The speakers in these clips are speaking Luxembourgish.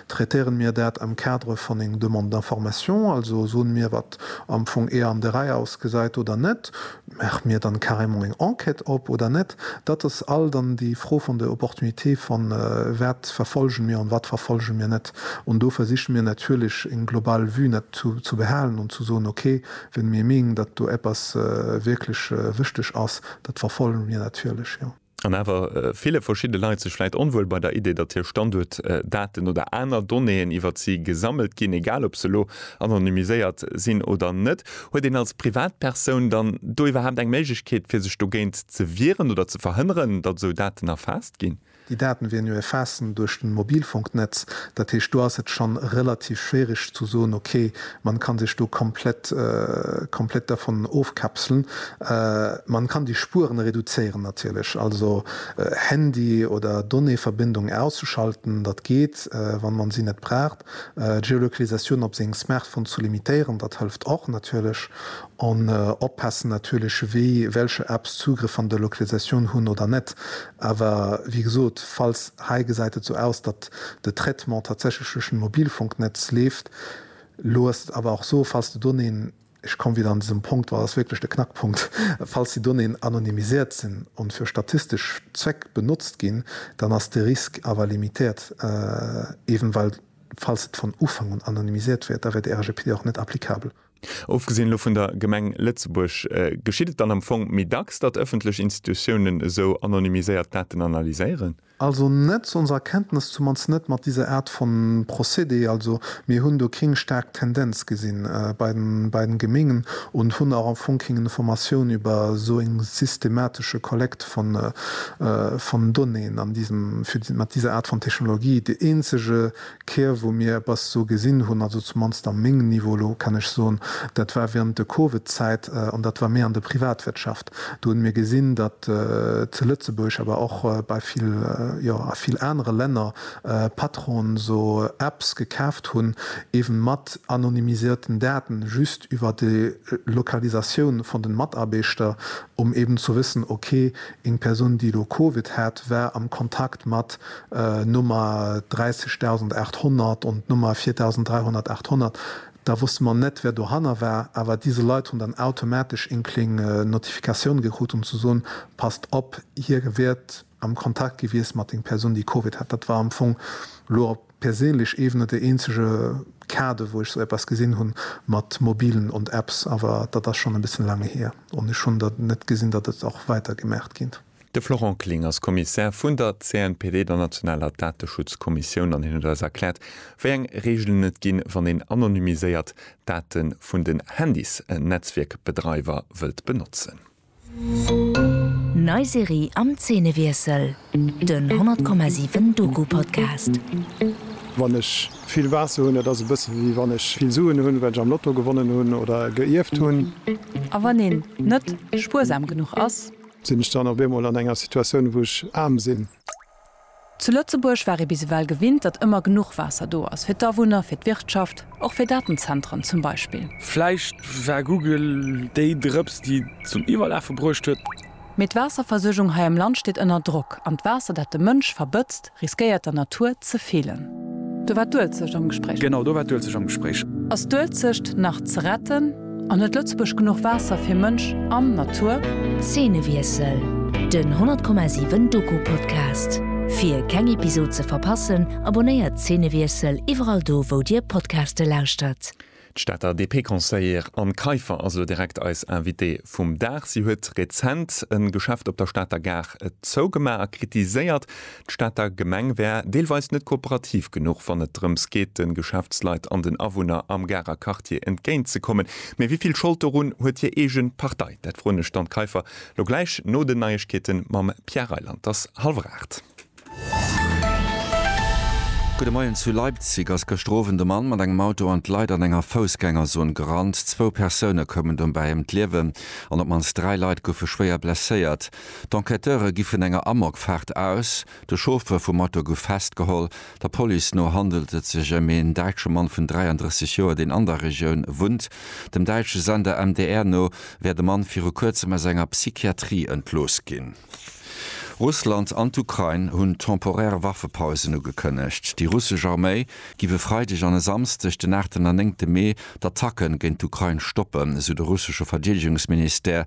Traitéieren mir dat am Cadre van eng Demande d'information, also soen mir wat am Fong eer an der Rei ausgesait oder net? Maachen mir dann carrément eng Enquête op oder net? Dat ass all dann déi Fro van der Opportunité van wat verfolgen mir an wat verfolgen mir net. An do versichen mir natierlech eng global Vue net zu behaalen an zu soen ok, wenn mir meengen dat do eppes wirklech wichteg ass, dat verfolgen mir natierlech jo. an awer ville verschidde Leit sech vläit onwuel bei der Idee, datt hir Standuertdaten oder aner Donnéeën iwwert si gesammelt ginn, egal ob se elo anonymiséiert sinn oder net. Huet een als Privatpersoun dann do iwwerhaapt eng Méiglechkeet, fir sech dogéint ze wieren oder ze verhënneren, datt esou Daten erfaasst ginn? Déi Daten wieren jo erfaassen duerch den Mobilfunknetz. Dat heescht, do ass et schonn relativ schwierig ze soen, okay, Man kann sech do komplett komplett dervun ofkapselen. Man kann déi Spueren reduzéieren natierlech, also Handy oder Donnéeverbindung auszuschalten, dat geet, wann man si net braucht. D'Geolokalisatioun op sengem Smartphone zu limitéieren, dat hëlft och natierlech. An oppassen natierlech wéi welcher Apps Zugrëff an der Lokalisatioun hunn oder net. Awer wéi gesot, falls hei gesäit et sou aus, datt de Traitement tatsächlech duerch den Mobilfunknetz leeft, Elo ass et awer och esou, falls de Donnéeën, ech komme wieder an dësem Punkt, well dat ass wierklech de Knackpunkt, falls déi Donnéeën anonymisiert sinn an fir statistesch Zweck benotzt ginn, dann ass de Risque awer limitéiert, eben well, falls et von Ufank un anonymisiert wär, da wär de RGPD och net applicabel. Ofgesinn elo vun der Gemeng Lëtzebuerg, geschitt et dann am Fong méi dacks, datt ëffentlech Institutiounen esou anonymiséiert Daten analyséieren? Also net, zu onser Erkenntnes zumannst net, mat diser Art von Procédé. Also mir hunn do kéng staark Tendenz gesinn bei den, bei den Gemengen und hunn auch am Fong kéng Informatioun über esou eng systematische Kollekt von, von Donnéeën an diesem, fir mat diser Art von Technologie. Dee eenzege D'Keer wou mir eppes esou gesinn hunn, also zumannst am mengem Niveau elo, kann ech soen, dat war während de Covid-Zäit an dat war méi an der Privatwirtschaft. Do hunn mir gesinn, datt zu Lëtzebuerg, awer och bei vill, jo a vill anere Länner, Patronen esou Apps gekaaft hunn, eeben mat anonymisierten Daten, just iwwer déi Lokalisatioun vun den Mataarbeeschter, um eeben zu wëssen, ok, Eng Persoun, déi elo Covid hat, war am Kontakt mat Nummer 30800 und Nummer 4300, 800. Da wosste mer net, wär dohanner war. Awer dise Leit hunn dann automatesch eng kleng Notifikatioun gekrut, um ze soen, Passt op, hie wiert am Kontakt gewiesst mat eng Persoun, déi Covid hat. Dat war am Fong elo op Perséinlech ewen net dee eenzege Kader wou ech sou eppes gesin hun mat Mobilen und Apps, awer datt ass schon en bessen laang heer on ech hun der net gesin datt et och weiter gemaacht gin. De Florent Kling ass Kommissär vun der CNPD, der nationaler Dateschutzkommissioun, an hien huet eis erkläert, wéi eng Reegelen et ginn, wann een anonymiséiert Date vun den Handys-Netzwierkbedreiwer wëllt benotzen. Nei Serie am Zeenewiessel, den 100,7 Doku-Podcast. Wann ech vill Waasser hunn, dat ass e bësse wéi wann ech vill Suen hunn, well ech am Lotto gewonnen hunn oder geierft hunn. A wann een net spuersam genuch ass? Sinn ech dann op eemol an enger Situatioun, wou ech aarm sinn? Zu Lëtzebuerg war ee bis ewell gewinnt, datt ëmmer genuch Waasser do ass, fir d'Awunner, fir d'Wirtschaft, och fir Datenzentren zum Beispill. Vläicht war Google déi Drëps, déi et zum Iwwerlafe bruecht huet. Mee d'Waasserversuergung hei am Land steet ënner Drock, an d'Waasser, dat de Mënsch verbëtzt, riskéiert der Natur ze feelen. Do war d'Uelzecht am Gespréich. Genau, do war d'Uelzecht am Gespréich. Ass d'Uelzecht nach ze retten? An huet Lëtzebuerg genuch Waasser fir Mënsch an Natur? Zeenewiessel, Den 100,7 Doku Podcast. Fir keng Episod ze verpassen, abonnéiert Zeenewiessel iwwerall do wou dir Podcaste lauschtert. D'Stater DP-Conseillère Anne Kaiffer ass elo direkt eis Invitée vum Dag. Si huet rezent e Geschäft op der Stater Gare zougemaach a kritiséiert, D'Stater Gemeng wär deelweis net kooperativ genuch, wann et drëms geet, de Geschäftsleit an den Awunner am Garer Quartier entgéint ze kommen. Mee wéi vill Schold dorun huet hir eege Partei? Dat froen ech d'Anne Kaiffer lo gläich no den Neiegkeete mam Pierre Reyland. Et ass hallwer aacht. Gudde Moien. Zu Leipzig ass gëschter Owend e Mann mat engem Auto an d'Leit an enger Foussgängerzon gerannt. Zwou Persoune koumen dobäi ëm d'Liewen an op d'mannst dräi Leit goufe schwéier blesséiert. D'Enquêteure gi vun enger Amokfaart aus. De Chauffeur vum Auto gouf festgeholl. Der Police no handelt et sech ëm een däitsche Mann vun 33 Joer, deen an der Regioun wunnt. Dem däitsche Sender MDR no wär de Mann viru kuerzem aus enger Psychiatrie entlooss ginn. Russland an d'Ukrain hunn temporär Waffepausen ugekënnegt. Déi russesch Arméi giff e Freideg an e Samsdeg, den aachten an néngte Mee, d'Attacken géint d'Ukrain stoppen, sou de russesche Verdeedegungsministère.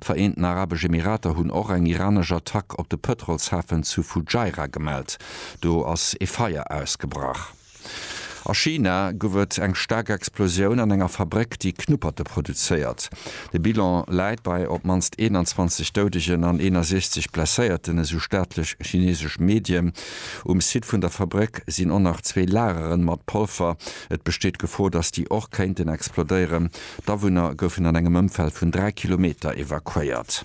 D'Vereenten Arabesch Emirater hunn och eng iranesch Attack op de Pëtrolshafen zu Fujairah gemellt. Do ass ee Feier ausgebrach. A China gouf et eng staark Explosioun an enger Fabréck, déi Knupperte produzéiert. De Bilan läit bei op d'mannst 21 Doudegen an 61 Blesséierten, esou staatlech chinesesch Medien. Um Site vun der Fabréck sinn och nach zwee Lagere mat Polver. Et besteet d'Gefor, datt déi och kéinten explodéieren. D'Awunner goufen an engem Ëmfeld vun 3 Kilometer evakuéiert.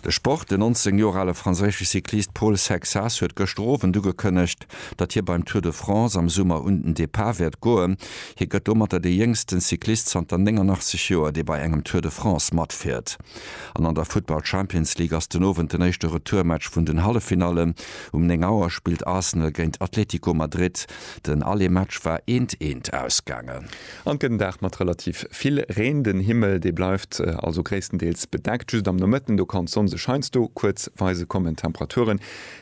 De Sport, Den 19 Joer ale franséische Cyclist Paul Sexas huet gëschter Owend ugekënnegt, datt hie beim Tour de France am Summer un den Depart wäert goen. Hie gëtt domatter de jéngsten Cyclist zanter 89 Joer, dee bei engem Tour de France matfiert. An an der Futtball Champions League ass den Owend den éischte Retourmatch vun den Halleffinallen. Um 9 Auer spillt Arsenal géint Atlético Madrid. Den Allez-Match war eent, eent ausgaangen. An gëtt en Dag mat relativ vill Reen. Den Himmel, dee bleift also gréisstendeels bedeckt. Just am Nomëtten, do kann d'Sonn sech heiansdo kuerz weise kommen. Temperaturen,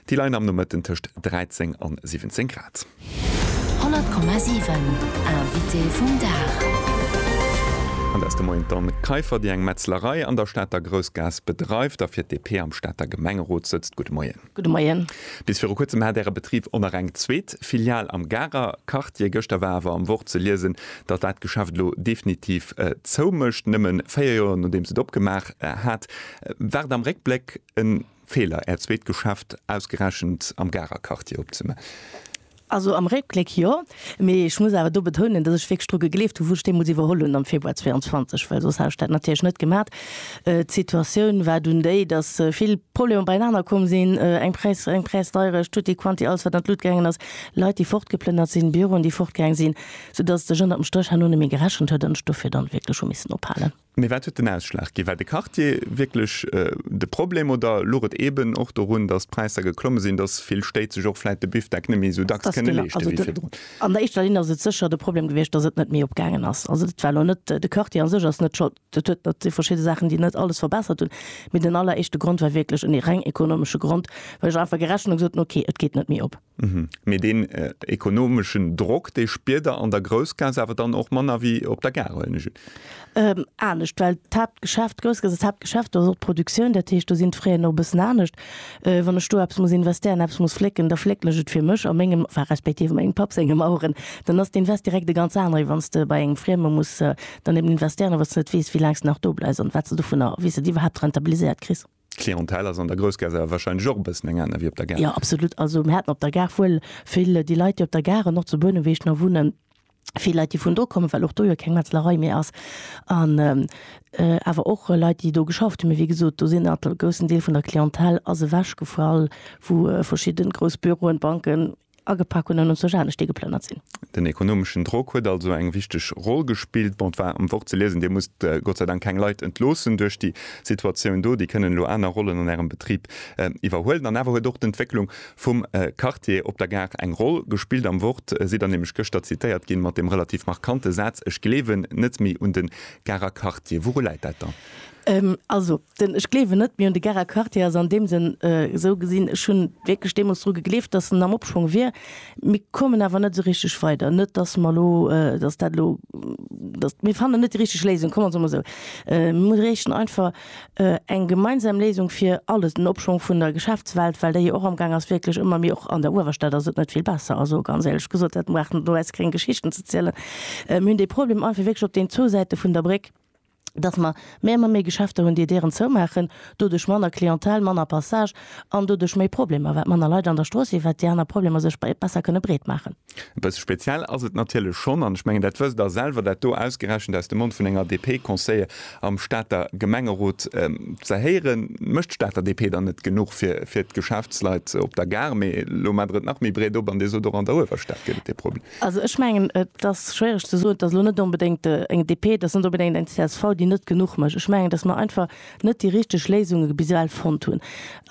déi leien am Nomëtten tëscht 13 an 17 Grad. 100,7 Invité vum Dag. An dat ass de Moien d'Anne Kaiffer, déi eng Metzlerei an der Stater Groussgaass bedreift a fir d'DP am Stater Gemengerot sëtzt. Gudde Moien. Gudde Moien. Bis viru kuerzem hat Äre Betrib och nach eng zweet Filial am Garer Quartier. Gëschter war awer am Wort ze liesen, datt dat Geschäft elo definitiv zoumécht, nëmme véier Joer nodeems et opgemaach hat. War et am Réckbléck e Feeler, Äert zweet Geschäft ausgerechent am Garer Quartier opzemaachen? Also am Réckbléck jo, mee ech muss awer do betounen, datt ech wierklech dru gegleeft hu wou ech deemools iwwerholl hunn am Februar 22, well soss hätt ech dat natierlech net gemat. D'Situatioun war dunn déi, datt vill Problemer beienaner komm sinn, eng Press, eng Pressdeierecht, tutti quanti, alles wat an d'Lut gaangen ass, Leit déi fortgeplënnert sinn, Büroen déi fortgaang sinn, soudatt et sech ënner dem Stréch herno net méi gerechent huet an ech dofir dann wierklech hu missen ophalen. Mee wat huet den Ausschlag ginn? War de Quartier wierklech de Problem oder luch et eeben och dorun, datt d'Präisser geklomme sinn, datt vill Stéit sech och vläit de Biffdeck net méi esou dacks kënne leeschte wéi virdrun? An der éischter Linn ass et sécher de Problem gewiescht, datt et net méi opgaangen ass. Also dat war elo net, de Quartier a sech ass net Schold, dat huet mat de verschidde Saachen, déi net alles verbessert hunn. Mee den alleréischte Grond war wierklech en reng ekonomesche Grond, well ech einfach gerechent hunn a gesot hunn, okay, et geet net méi op. Mee deen ekonomeschen Drock, dee spiert Der an der Groussgaass awer dann och manner wéi op der Gare, huelen ech un? Anescht, well d'Haaptgeschäft, d'Groussgaass ass d'Haaptgeschäft, do ass och d'Produktioun, dat heescht, do sinn d'Fraien och e bëssen anescht. Wann ech do eppes muss investéieren, eppes muss flécken, da flécken ech et fir mech a mengem, enfin respektiv a mengem Papp sengem Aueren, dann ass d'Invest direkt e ganz anere wéi wann s de bei engem Frieme muss dann eben investéieren a wou s de net weess, wéi laang s de nach do bleifs an wat s de dovunner, wéi s de et iwwerhaapt rentabiliséiert kriss. D'Clientèle ass an der Groussgaass awer wahrscheinlech och e bëssen eng aner wéi op der Gare? Jo, absolut. Also mir haten op der Gare wuel vill déi Leit, déi op der Gare an och zu Bouneweg nach wunnen, vill Leit, déi vun do kommen, well och do jo keng Metzlerei méi ass, an awer och Leit, déi do geschafft hunn. Mee wéi gesot, do sinn awer e groussen Deel vun der Clientèle ass ewechgefall, wou verschidde grouss Büroen, Banken, agepak hunn an ons duerch anescht déi geplënnert sinn. Den ekonomeschen Drock huet also eng wichteg Roll gespillt. Bon, et war am Wort ze liesen, Dir musst Gott sei Dank keng Leit entloossen duerch déi Situatioun do. Déi kënnen elo aner Rollen an Ärem Betrib iwwerhuelen. An awer huet och d'Entwécklung vum Quartier op der Gare eng Roll gespillt. Am Wort sidd Der nämlech gëschter zitéiert ginn mat deem relativ markante Saz, Ech gleewen net méi un de Garer Quartier. Wouru läit dat dann? Also, Den Ech gleewen net méi un de Gerard Cartier ass an deem Sënn esou gesinn, ech hunn wierklech deemools dru gegleeft, datt en am Opschwong wier. Mir kommen awer net esou richteg weider. Net datt mer elo, datt dat elo, datt, mir fannen net déi richteg Léisung, kommen se emol esou. Mir bräuchten einfach eng gemeinsam Léisung fir alles, den Opschwong vun der Geschäftswelt, well déi jo och amgaang ass wierklech ëmmer méi, och an der Uewerstad ass et net vill besser. Also ganz éierlech gesot, dat brauch net elo eis gréng Geschichten ze zielen. Mir hunn dee Problem einfach wierklech op den zwou Säite vun der Bréck. dass mer méi a méi méi Geschäfter hunn, déi hir Dieren zoumaachen, doduerch manner Clientèle, manner Passage an doduerch méi Problemer, well manner Leit an der Strooss sinn, well déi aner Problemer sech besser kënne breet maachen. E bësse speziell ass et natierlech schonn, an ech mengen, dat wësst Der selwer, dat do ausgerechent aus dem Mond vun enger DP-Conseiller am Stater Gemengerot ze héieren. Mécht d'Stater DP dann net genuch fir d'Geschäftsleit op der Gare? Mee elo maacht Der et nach méi breet op an Dir sot, och an der Uewerstad gétt et e Problem. Also ech mengen, et ass schwiereg ze soen, et ass elo net onbedéngt eng DP, et ass net onbedéngt eng csv, déi net genuch mécht. Ech mengen, datt mer einfach net déi richteg Léisunge bis ewell fonnt hunn.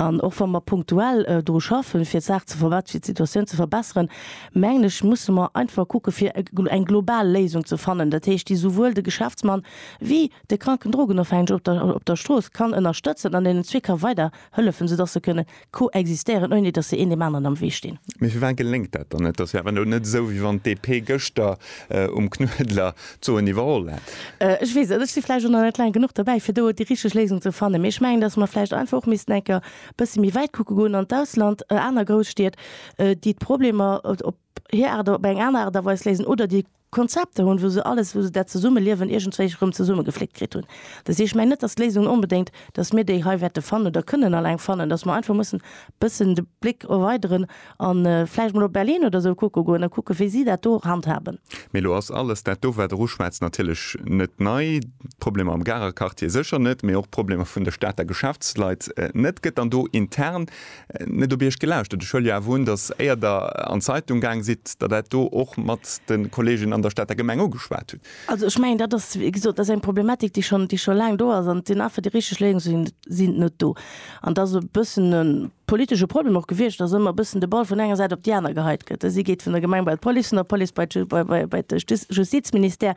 An och wa mer punktuell dru schaffen, fir d'Saach ze verbessern, fir d'Situatioun ze verbessern, mengen ech, musse mer einfach kucken, fir eng global Léisung ze fannen, dat heescht, déi esouwuel de Geschäftsmann wéi de kranken Drogenofhängege op der Strooss kann ënnerstëtzen an deenen zwee ka weiderhëllefen, soudatt se kënnen koexistéieren, ouni datt se een deem aneren am Wee stinn. Mee firwat geléngt dat dann net? Dat ass jo awer elo net esou, wéi wann d'DP gëschter um Knuedler d'Soen iwwerholl hätt. Ech weess net, ech si vläicht och nach net laang genuch dobäi, fir do déi richteg Léisung ze fannen. Mee ech mengen, datt mer vläicht einfach och missten enker e bësse méi wäit kucke goen, an d'Ausland, aner Grousstied, déi d'Problemer op, hir Aart op eng aner Aart a Weis léisen oder déi Konzepter hunn, wou se alles, wou se dat Zesummeliewen iergendwéi erëm zesummegefléckt kritt hunn. Dat heescht, ech mengen net, datt d'Léisung onbedéngt, datt mir déi hei wäerte fannen oder kënnen alleng fannen, datt mer einfach mussen e bëssen de Bléck erweideren a vläicht mol op Berlin oder esou kucke goen a kucke wéi si dat do handhaben. Mee elo ass alles dat do, wat Der uschwätzt, natierlech net nei, d'Problemer am Garer Quartier sécher net, mee och d'Problemer vun de Stater Geschäftsleit net. Gëtt dann do intern net op Iech gelauschtert. Ech huele jo awer un, datt, éier Der an d'Zeitung gaang sidd, Der dat do och mat de Kolleegen an der Stater Gemeng ugeschwat hutt. Also ech mengen, dat ass, wéi gesot, dat ass eng Problematik, déi schonn, déi scho laang do ass. An et sinn einfach, déi richteg Léisungen sinn net do. An dat ass e bëssen e politesche Problem och gewiescht, datt ëmmer e bëssen de Ball vun enger Säit op déi aner geheit gëtt. Dësi geet vun der Gemeng bei d'Police, vun der Police bei d'Ju, bei de Justizministère.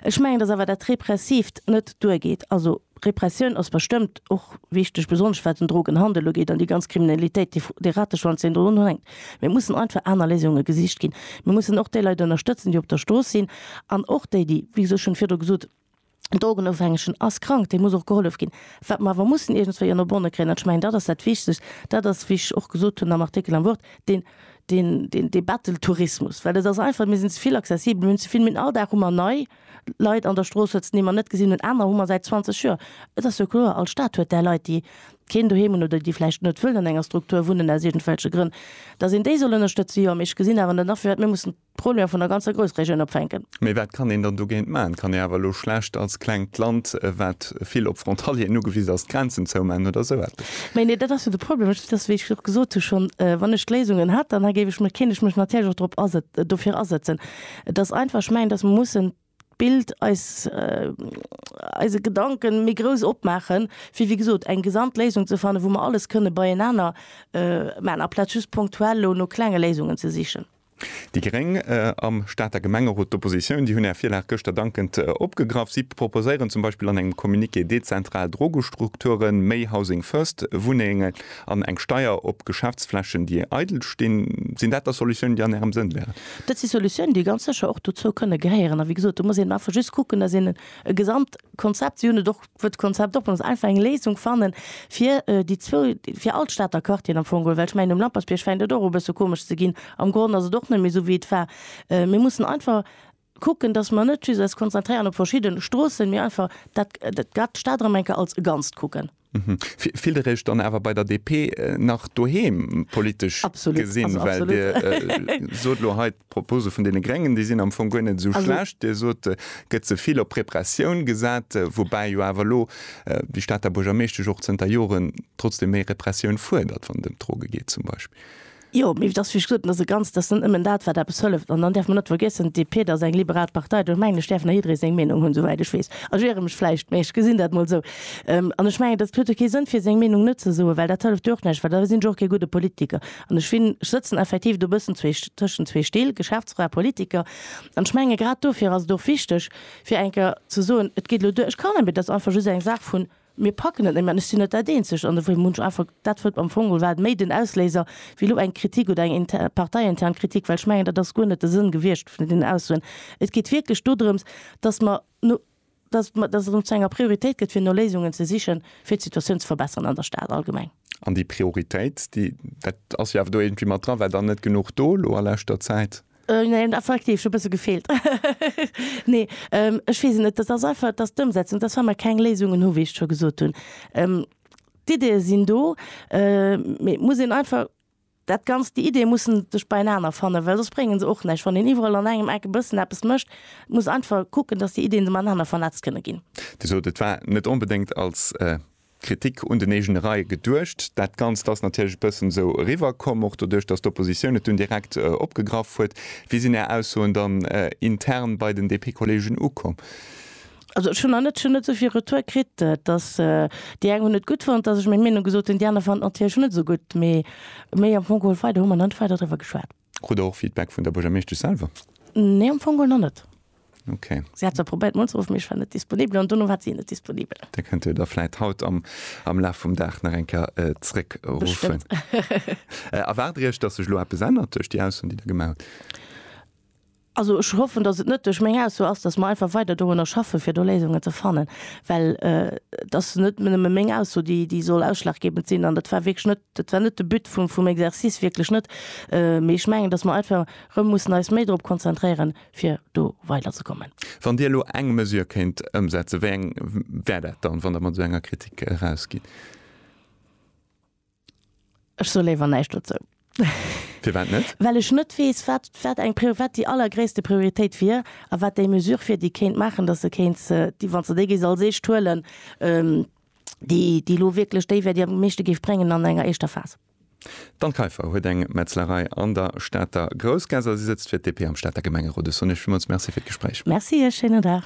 Ech mengen, datt awer dat Repressiivt net duergeet. Also Repressioun ass bestëmmt och wichteg, besonnesch wat den Drogenhandel ugeet an déi ganz Kriminalitéit, déi, dee Rateschwanz, deen do drunhänkt. Mee et mussen einfach aner Léisunge gesicht ginn. Mir mussen och déi Leit ënnerstëtzen, déi op der Strooss sinn, an och déi, déi, wéi gesot, ech hunn et virdru gesot, en Drogenofhängegen ass krank, deem muss och gehollef ginn. Wat mer awer mussen iergendswéi ënner Bonne kréien, an ech mengen dat ass dat Wichtegst, dat ass, wéi ech och gesot hunn am Artikel am Wort, deen, deen, deen, dee Betteltourismus. Well et ass einfach, mir sinn ze vill accessibel, mir hunn ze vill, mir hunn all Dag hu mer nei, Leit an der Strooss huet, déi mer net gesinn hunn, aner hu mer säit 20 Joer. Et ass jo kloer, all Stad huet där Leit, déi keen Doheem hunn oder déi vläicht net wëllen an enger Struktur wunnen aus iergendwelche Grënn, datt een déi soll ënnerstëtze jo. Mee ech gesinn awer net a firwat mir mussen d'Probleme vun der ganzer Groussregioun opfänken. Mee wat kann een dann dogéint maachen? Et kann ee awer elo schlecht als klengt Land, wat vill op Frontalieren ugewisen ass, d'Grenzen zoumachen oder esou eppes. Mä nee, dat ass jo de Problem. Ech, wéi ech och gesot hu schonn, wann ech d'Léisungen hätt, dann géif ech mech, kéint ech mech natierlech och drop asëtzen, dofir asëtzen. Et ass einfach, ech mengen, datt mer mussen d'Bild, eis, eise Gedanken méi grouss opmaachen, fir, wéi gesot, eng Gesamtléisung ze fannen, wou mer alles kënne beienaner maachen, aplaz just punktuell elo no klenge Léisungen ze sichen. Déi Gréng am Stater Gemengerot, d'Oppositioun, déi hunn Är Virlag gëschter dankend opgegraff. Si proposéieren zum Beispill an engem Communiqué dezentral Drogestrukturen, méi Housing First Wunnengen an eng Steier op Geschäftsflächen, déi eidel stinn. Sinn dat da Solutiounen, déi an Ärem Sënn wären? Dat si Solutiounen, déi ganz sécher och dozou kënne gehéieren. A wéi gesot, do muss een einfach just kucken, dass een e Gesamtkonzept, si hunn et och, wou d'Konzept och benotzt, einfach eng Léisung fanne fir déi zwou, fir all d'Stater Quartieren am Fong geholl. Well ech mengen, um Lampertsbierg fänkt et och u bësse komesch ze ginn. Am Gronn ass et och net méi esou wéi et war. Mir mussen einfach kucken, dass mer net just eis konzentréieren op verschidde Stroossen, mee einfach dat, dat grad d'Stad erëm eng Kéier als e Ganzt kucken. Mhm. Fillt Dir Iech dann awer bei der DP nach doheem politesch gesinn? Well Dir sot elo hei, d'Propose vun deene Gréngen, déi sinn am Fong guer net esou schlecht. Dir sot, et gëtt ze vill op Repressioun gesat, woubäi jo awer elo déi Stater Buergermeeschtesch och zënter Joren trotzdeem méi Repressioun fuerdert, wann et ëm d'Droge geet zum Beispill. Jo, mee dass, wéi ech gesot hunn, dass e ganz, dass net nëmmen dat wat eppes hëlleft. An dann däerf mer net vergiessen, d'DP, et ass eng liberal Partei, do ech mengen, ech däerf nach jidderee seng Meenung hunn, souwäit ech weess. Ech iere mech vläicht, mee ech gesinn dat emol esou. An ech mengen, dass et huet jo kee Sënn fir seng Meenung net ze soen, well dat hëlleft jo och näischt, well da sinn ech och kee gudde Politiker. An ech sinn, ech sëtzen effektiv do e bëssen zwee, tëschent zwee Still, Geschäftsfra, Politiker. An ech menge grad dofir ass et och wichteg fir eng Kéier ze soen, et geet elo duer, ech kann, et ass einfach just eng Saach vun, Mir packen et net méi an ech sinn net dat eenzegt an ewéi munch einfach dat wëllt. Am Fong war et méi den Ausléiser wéi elo eng Kritik oder eng parteiintern Kritik, well ech mengen dat ass guer net de Sënn gewiescht vun deenen Aussoen. Et geet wierklech dodrëms, datt mer no, datt mer, datt et zu enger Prioritéit gëtt fir no Léisungen ze sichen, fir d'Situatioun ze verbessern an der Stad allgemeng. An déi Prioritéit, déi, dat ass jo awer do iergendwéi mat dran, war dann net genuch do elo a leschter Zäit? Äh, nee, dat war aktiv, schon bësse gefeelt. nee, ähm, ech weess net, dat ass einfach, dass d'Ëmsetzung, dass wa mer keng Léisungen hu, wéi ech scho gesot hunn. Ähm, d'Ideeë sinn do, äh, mee et muss een einfach dat Ganzt, déi Ideeë mussen sech beienaner fannen, well soss brénge se och näischt. Wann een iwwerall an engem Eck e bëssen eppes mécht, muss einfach kucken, dass déi Ideeën se matenaner vernetzt kënne ginn. Dir sot, et war net onbedéngt als, äh, Kritik un den eegene Reie geduecht. Dat Ganzt ass natierlech e bëssen esou eriwwerkomm, och doduerch, datt d'Oppositioun et dunn direkt opgegraff huet. Wéi sinn Är Aussoen dann intern bei den DP-Kollegen ukomm? Also ech hunn nach net, ech hunn net esou vill Retour kritt, datt déi eng hunn et gutt fonnt, datt ech meng Meenung gesot hunn, déi aner fanden d'natierlech net esou gutt. Mee am Fong geholl weider hu mer nach net weider driwwer geschwat. Krut der och Feedback vun der Buergermeeschtesch selwer? Nee, am Fong geholl nach net. Okay. Si hat zwar probéiert mol ze ruffen, mee ech war net disponibel an dono war si net disponibel. Da kënnt Dir der vläit haut am am Laf vum Dag nach eng Kéier zréckruffen. Erwaart Dir Iech, datt sech elo eppes ännert duerch déi Ausso, déi Der gemaach hutt? Also ech hoffen, dass et net duerch meng Ausso ass, dass mer einfach weider dorunner schaffen, fir do Léisungen ze fannen, well et ass net nëmme meng Ausso, déi soll ausschlaggebend sinn, an dat war wierklech net, dat war net de But vum Exercice, wierklech net. Mee ech mengen, dass mer einfach erëm mussen eis méi drop konzentréieren, fir do weiderzekommen. Wann Dir elo eng Mesure kéint ëmsetzen, wéi eng wär dat dann, wann Der mat esou enger Kritik erausgitt? Ech soe léiwer näischt dozou. Firwat net? Well ech net weess, wat, wat eng Priori, wat déi allergréisste Prioritéit wier a wat déi Mesure wier, déi kéint maachen, datt se kéint se, déi, wann s de déi géifs als éischt huelen, déi, déi elo wierklech déi wär, déi am meeschte géif bréngen an enger éischter Phas. D'Anne Kaiffer huet eng Metzlerei an der Stater Groussgaass a si sëtzt fir d'DP am Stater Gemengerot. Ech soen Iech villmools Merci fir d'Gespréich. Merci Iech. Schéinen Dag.